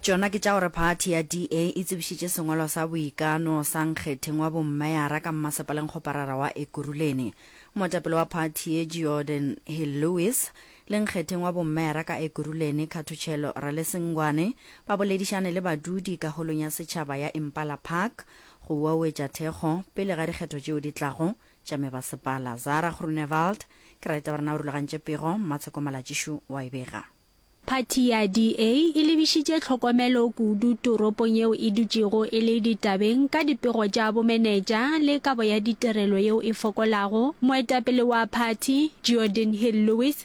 Tšona ke tša gore phathi ya DA e tsebišitše sengwalo sa boikano sa nkgetheng wa bommeyara ka mmasepaleng kgoparara wa Ekurhuleni. Moetapele wa phathi ye Georden Hill Lewis le nkgetheng wa bommeyara ka Ekurhuleni Khathutshelo Ralesengwane ba boledišane le badudi ka holong ya setšhaba ya Impala Park go uauetša thekgo pele ga dikgetho tšeo di tlago tša mebasepala. Zara Groenewald, Ke ra itaba re na o rulagantše pego, Mmatsheko Malatšišu wa e bega. Phathi ya DA e lebišitše tlhokomelo kudu toropong yeo e dutšego e le ditabeng ka dipego tša bomenetša le kabo ya ditirelo yeo e fokolago. Moetapele wa phathi, Geordin Hill-Lewis,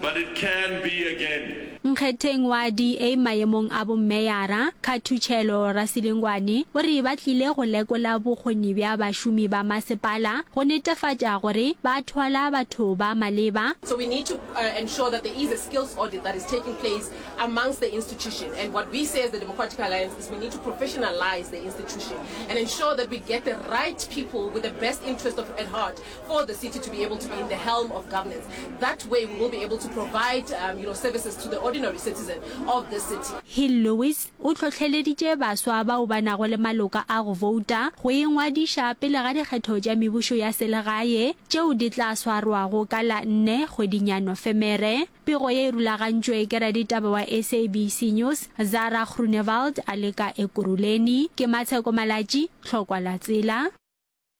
But it can be again. Nkgetheng wa DA mayemong a bommeyara, Khathutshelo Rasilengwane o re ba tlile go lekola bokgoni bja bašomi ba masepala go netefatša gore ba thwala batho ba maleba. So we need to ensure that there is a skills audit that is taking place amongst the institution and what we say as the Democratic Alliance is we need to professionalize the institution and ensure that we get the right people with the best interest of at heart. for the city to be able to be in the helm of governance. That way we will be able to provide um, you know, services to the ordinary citizen of the city. Hill Lewis o tlhotlheleditše baswa bao ba nago le maloka a go vouta go ingwadiša pele ga dikgetho tša mebušo ya selegae tšeo di tla swarwago ka la nne kgweding ya Nofemere. Pego ye e rulagantšwe ke raditaba wa SABC News Zara Groenewald a leka Ekurhuleni. Ke Matsheko Malatši, Tlhokwa la Tsela.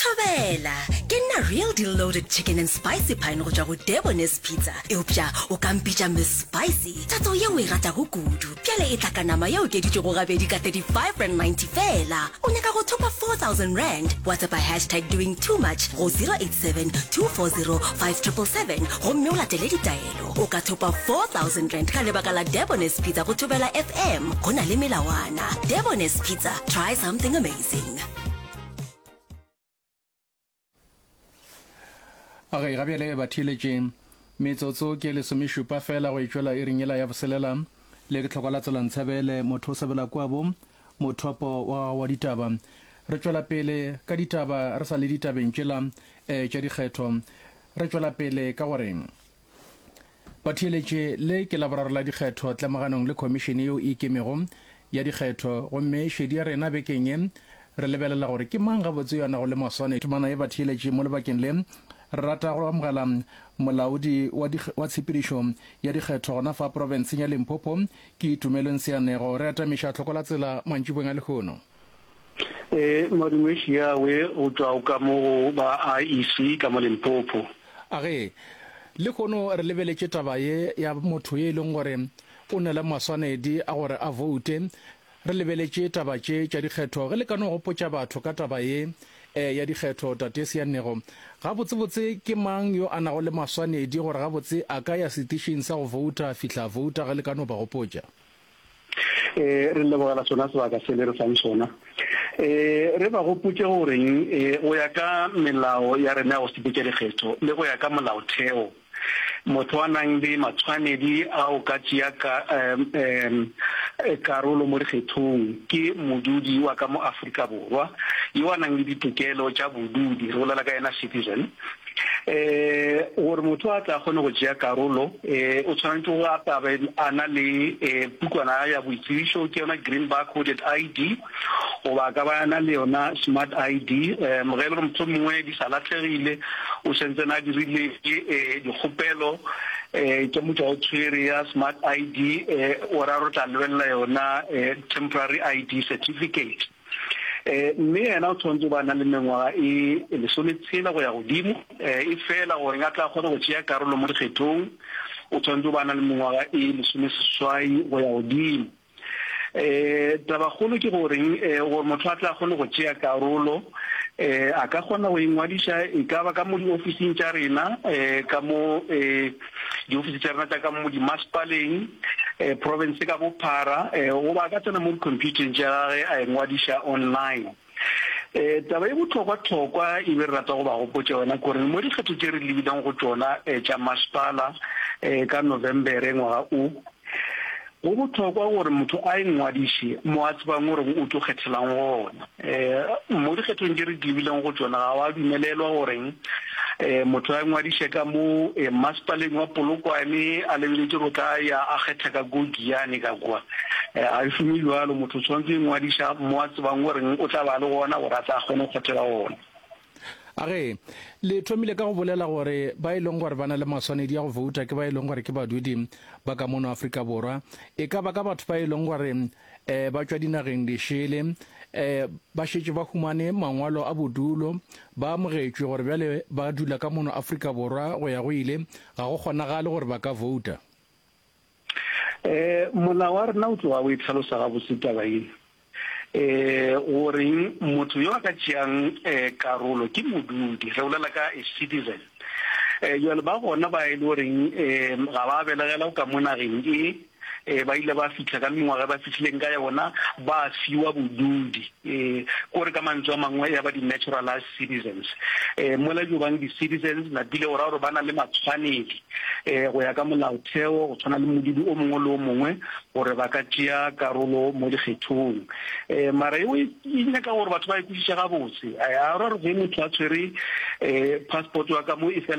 Thobela! Ke nna Real Deal Loaded Chicken and Spicy Pine go tšwa go Debonairs Pizza. Eupša o ka mpitša Miss Spicy, tatso yeo o e ratago kudu. Bjale e tla ka nama e okeditšwego gabedi ka R35.90 feela. O nyaka go thopa R4,000? Whatsappa hashtag doing too much go 087 240 5777 gomme o latele ditaelo. O ka thopa R4,000 ka lebaka la Debonairs Pizza go Thobela FM. Go na le melawana. Debonairs Pizza, try something amazing. okay ga bjale ba theeletše metsotso ke lesomešupa fela go etšwela e ringela ya boselela le ke tlhokwa la tsela ntshabele motho o sebela kwabo mothopo wa gago wa ditaba re tšwela pele ka ditaba re sa le ditabeng tšela um tša dikgetho re tšwela pele ka gore Batheeletše le ke Laboraro la dikgetho tlemoganong le Khomišene yeo e Ikemego ya dikgetho gomme šedi ya rena bekeng ye re lebelela gore ke mang gabotse yo a nago le maswane Temana ye Batheeletše mo lebakeng le re rata go amogela Molaodi wa, wa Tshepedišo ya Dikgetho gona fa Profenseng ya Limpopo ke Itumelong Seanego re atamiša tlhokola tsela mantšibong a lehono. E, Madumeši ya we go tšwa o ka mo go ba IEC ka mo Limpopo. A ge, lehono re lebeletše taba ye ya motho ye e leng gore o na le maswanedi a gore a voute, re lebeletše taba tše tša dikgetho, ge le ka no gopotša batho ka taba ye e ya dikgetho, Tate Seannego, gabotsebotse ke mang yo a nago le maswanedi gore gabotse a ka ya setišing sa go vouta, fihla vouta ge le ka no ba gopotša? E, re lebogela sona sebaka se le re fang sona. E, re ba gopotše goreng e, go ya ka melao ya rena ya go sepetša dikgetho le go ya ka molaotheo, motho a nang le matshwanedi a go ka tšea ka, um, um, karolo mo dikgethong ke modudi wa ka mo Afrika Borwa yo a nang le ditokelo tša bodudi, re bolela ka yena citizen. um gore motho a tla kgone go tšea karolo um o tshwanetse go atabe a na le um pukwana ya boitsebišo ke yona green bar coded ID goba ka ba na le yona smart ID um ge e le gore motho mongwe di sa latlhegile o sentse na dirile um dikgopelo um ke motho o tshwere ya smart ID um o ra re tla lebelela yona um temporary ID certificate um mme yena o tshwanetse o ba a na le mengwaga e lesometshela go ya godimo. um efela gore a tle a kgone go tšea karolo mo dikgethong, o tshwanetse o ba a na le mengwaga e lesomeseswai go ya godimo. um tabakgolo ke goreng? um gore motho a tle a kgone go tšea karolo, um a ka kgona go ingwadiša e ka ba ka mo diofising tša rena, um ka mo um diofisi tša rena tša ka mo dimasepaleng, um profense ka bophara, um goba a ka tsena mo dikhomphutheng tša gage a engwadiša online. Um taba e bohlokwa-hlokwa e be re rata go ba gopotša yona ke gore mo dikgetho tše re lebileng go tšona um tša masepala um ka Novembere ngwaga o, Go bohlokwa gore motho a ingwadiše mo a tsebang gore o tlo kgethelang gona. Mo dikgethong tše re di lebileng go tšona ga wa dumelelwa gore motho a ingwadiše ka mo Mmasepaleng wa Polokwane a lebeletše go tla ya a kgetha ka ko Giyane ka kwa. Ga e šome bjalo, motho o tshwanetse go ingwadiša mo a tsebang gore o tla ba le gona gore a tle a kgone go kgethela gona. A re, Le thomile ka go bolela gore ba e leng gore ba na le maswanedi a go vouta ke ba e leng gore ke badudi ba ka mono Afrika Borwa. E ka ba ka batho ba e leng gore um ba tšwa dinageng dišele um ba šetše ba humane mangwalo a bodulo ba amogetšwe gore bjale ba dula ka mono Afrika Borwa go ya go ile ga go kgonagale gore ba ka vouta. Um molao wa rena o tloga o e tlhalosa gabotse taba ye um goreng motho yo a ka tšeang um karolo ke modudi re bolela ka a citizen um jale ba gona ba e le goreng um ga ba belegela ka mo nageng e um ba ile ba fitlha ka mengwaga e ba fitlhileng ka yona ba fiwa bodudi um kore ka mantswe a mangwe ya ba di-naturalized citizens um mola jo bang di-citizens lapile go raya gore ba na le matshwanedi um go ya ka molaotheo go tshwana le modudi o mongwe le o mongwe gore ba ka tšea karolo mo dikgethong um mara eo e, e nyaka gore batho ba e kwešiša gabotse a ra re ge motho a tshwere um passport wa ka mo e fela